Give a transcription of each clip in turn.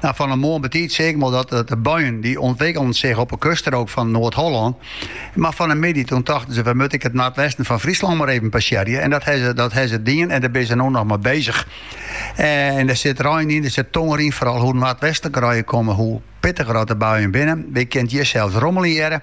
Nou, fan 'e moarn betiid seaken we al dat de buien die ûntwikkelden sich op 'e kuststrook fan Noard-Hollân. Mar fan 'e middei doen tochten se we moatte ek it noardwesten fan Fryslân mar even passearje. En dat hawwe dat hawwe se dien en dêr binne se no noch mei bezich. En dêr sit rein yn, dêr sit tonger yn, foaral hoe noardwestliker je komme, hoe pittiger as de buien binne. Wy kinne it hjir sels rommeljen hearre.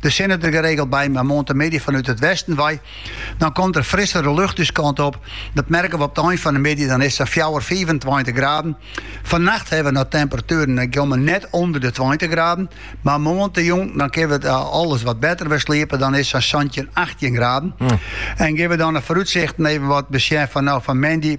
De sinne der geregeld by, mar moarn te middei fanút it westen wei. Dan komt der frissere lucht ús kant op. Dat merke we op de ein fan de middei, dan is it sa'n fjouwer, fiifentweintich graden. Fannacht hawwe we noch temperatueren, dy komme net ûnder de tweintich graden. Mar moarntejûn dan kinne we alles wat better wer sliepe, dan is it sa'n santjin, achttjin graden. En gean we dan de foarútsichten even wat besjen fan no fan moandei.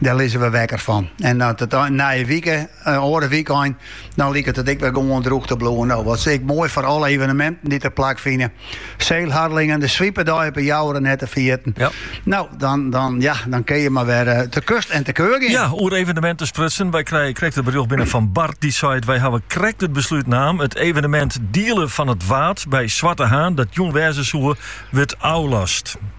Dêr lizze we wekker fan. En dan nije wike, oare wykein, dan liket it ek wer gewoan drûch te bliuwen. No, wat is 't ek moai foar alle eveneminten dy't der plakfine. Sail Harlingen, de Swipedei op 'e Jouwer net te ferjitten. Ja. No, dan, dan, ja, dan kin je mar wer eh, te kust en te keur gean. Ja, oer evenementen sprutsen. Wy krije krekt it berjocht binnen fan Bart. Dy seit, wy hawwe krekt it beslút naam. It evenemint Dielen fan it Waad by Swarte Haan, dat jûn wêze soe, wurdt ôflast.